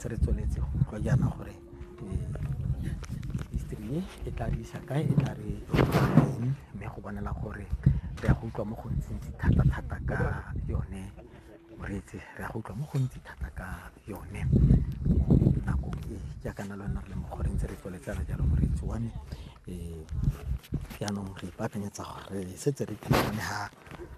Se re tsweletse go utlwa jaana gore history e e tla re isa kae e tla re eng mme go bonela gore re ya go utlwa mo gontsintsi thata-thata ka yone moreetse re ya go utlwa mo gontsi thata ka yone mo nakong e jaaka na le wena re le mo gore ntse re tsweletsana jalo moreetse wa me um jaanong re ipaakanyetsa gore setse re tlile ga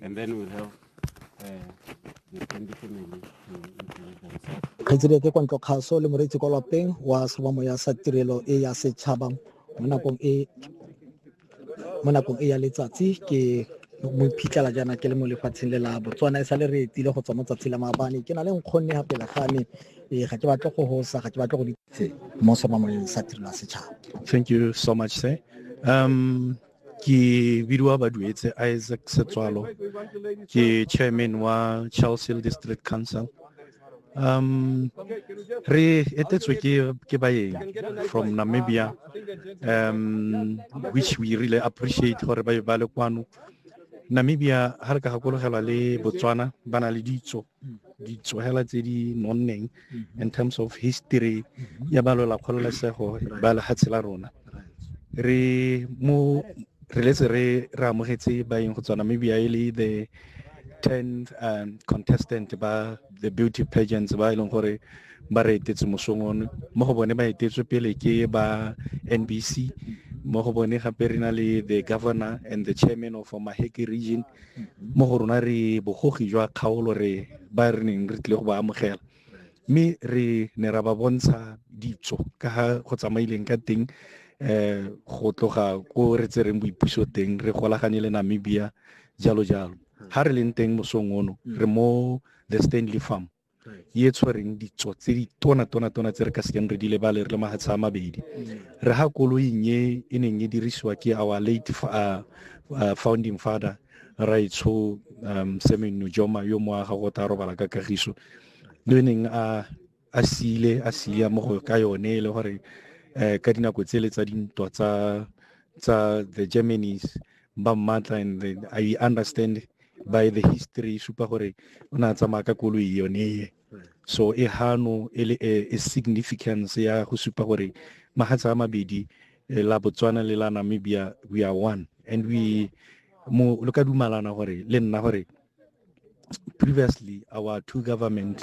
And then we'll have kgaitsedi ke kwantlo kgaso le moreetsi kwa lapeng wa sebamo ya sa tirelo e ya setšhaba mo nakong e mo nakong e ya letsatsi ke mo iphitlhela jaana ke le mo lefatsheng le la botswana e sa le re etile go tswa mo tsatsi la maabane ke na le nkgonne ga pele ga me ee ga ke batle go gosa ga ke batle go ditse mo sebamoyeng sa tirelo ya setšhaba thank you so much sir um Ke bidiwa Baduetse Isaac Setswalo, ke chairman wa Charles Hill District Council. Um, re etetswe ke ke baeng from Namibia um, which we really appreciate gore ba ba le kwano Namibia ha re ka gakologelwa le Botswana ba na le ditso ditso hela tse di nonneng in terms of history ya ba lwela kgololesego ba lefatshe la rona re mo re letse re re amogetse baeng go tswa namibia e le the 10 um, contestant ba the beauty pageants ba e leng gore ba re etetse mosong ono mo go bone ba etetswe pele ke ba nbc mo go bone gape re na le the governor and the chairman of maheke region mo go rona re bogogi jwa kgaolo re ba re neng re tlile go ba amogela mme re ne ra ba bontsha ditso ka ga go tsamaileng ka teng um go tloga ko re tsereng boipuso teng re golaganye le namibia jalo jalo ga re leng teng mosong ono re mo the stanley farm ye tshwereng ditso tse di tona tona tona tse re ka sekeng re di lebale re le mahatshe a mabedi mm. re ha koloing e e neng e dirisiwa ke our late uh, uh, founding father raitsho um semen nojoma yo mo aga go ta robala ka kagiso yo e neng a a siile a siile mo go ka yone e le gore um ka dinako tsele tsa dintwa tsa tsa the germanys ba mmatla and i understand by the history e supa gore o ne a tsamaya ka koloi yone e so e hano e le e significance ya go supa gore mahatsha a mabedi eh, la botswana le la namibia we are one and we mo lo ka dumalana gore le nna gore previously our two government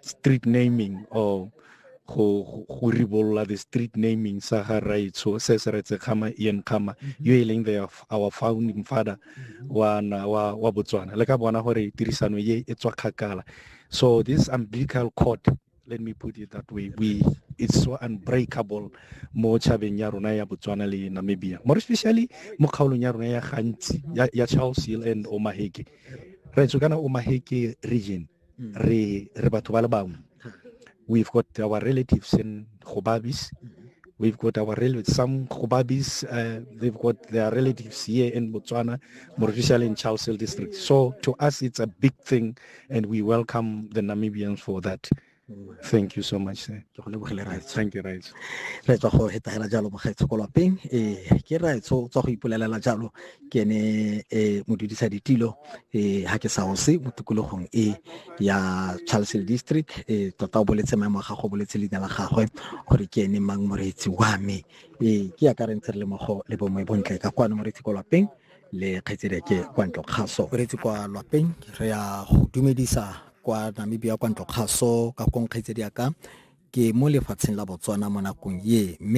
street naming or go go ribolola the street naming sa ga raitsho se se retse kgama ian kgama yo e leng the our founding father wa wa wa botswana le ka bona gore tirisano ye e tswa kgakala so this umbilical cord let me put it that way we it's so unbreakable mo chabeng ya rona ya botswana le namibia more especially mo kgaolong ya rona ya gantsi ya charles hill and omaheke re tsokana omaheke region re re batho ba le bangwe we've got our relatives in Gobabis we've got our relatives some Gobabis uh, they've got their relatives here in Botswana Morishal in Charles Hill district so to us it's a big thing and we welcome the Namibians for that Thank you so much. Sir. Thank you, Raiso. Re tswa go hetagela jalo mogaetsho ko lapeng. Eh, ke Raiso tswa go ipolelela jalo. ke ne eh, modudisa ditilo eh, ha ke sa ose mo tikologong e ya Charlesville district eh, tota o boletse maemo a gago o boletse leina la gagwe gore ke ene mang moreetsi wa me eh, ke ya ka re ntse re le mogo le bongwe e bontle ka kwano moreetsi ko lapeng le kgaitsedi ke kwa ntlo kgaso moreetsi kwa lapeng re ya go dumedisa kwa namibia kwa ntlo kgaso ka kong kgaitsedi ya ka ke mo lefatsheng la botswana mo nakong ye